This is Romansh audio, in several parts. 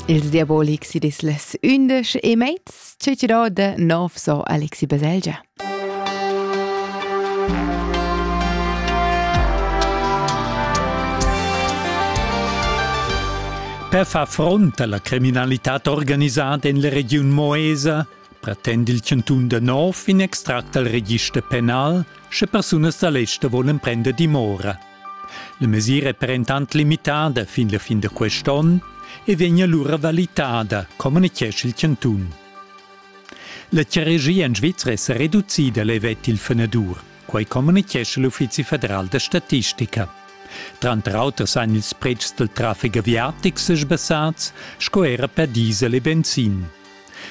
Ils diabolics i dis les undisch e mezs cecirò de nov so Alexi Baselgia. Per far front alla criminalità organisata in la regiun Moesa pretend il cantun de Nov in extract al register penal, sche persunas da l'ester volen prender dimora. La mesira è per entant limitada fin la fin da quest onn e vegn alura valitada, communitgescha il chantun. La charagia en Svizra è sa reducida, levet il fenadur. Quai communitgescha l'Uffizi federal da statistica. Tranter auter san ils pretschs dal traffic aviatic sesbassats sco era per diesel e benzin.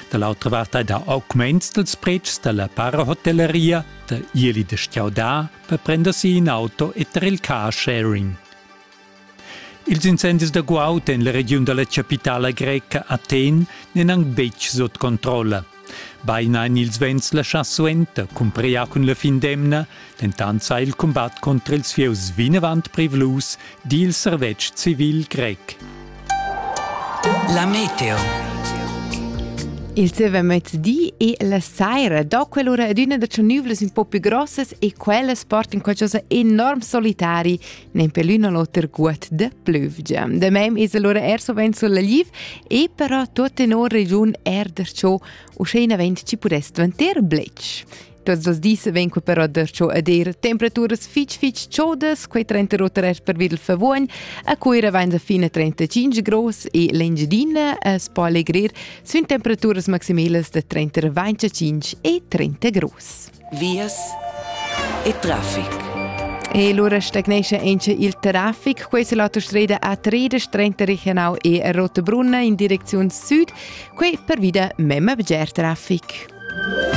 Da l'autra vart hai dà augments dals pretschs da la parahotellaria, da ieli da stgaudar per prender si in auto e ter il car sharing. Ils incendis da guaud en la regiun da la chapitala greca Athen n'èn anc betg sut controlla. Beina èn ils vents laschà suenter, cumpria cun la fin d'emna, dentant sa il cumbat contra ils fieus vinavant privlus, di il servetsch civil grec. La meteo. Il zieva mezzdi e la saira do quell'ura adüna da tschernüvlas un po più grossas e quellas portan qualcosa enorm solitari, nempe l'un a l'oter guot de plüvgia. Da mem es allora er sovent sulla liv e però tut in ora regiun er der ciò, usché in avent ci pudess dvanter blech. Tuots dos dis vegn quei però darcho ad ir temperaturas fitg fitg chodas, quei 38 grad per Videl Favuogn, a Cuira vain da fine 35 gros e l'Engiadina a spalegrir sun temperaturas maximelas da 35 e 30 gros. Vias e traffic. E lura stagnesce anche il traffic. Questa è l'autostrada A3 regional e Rotebrunna in direzione sud. Qui per via mema bger traffic.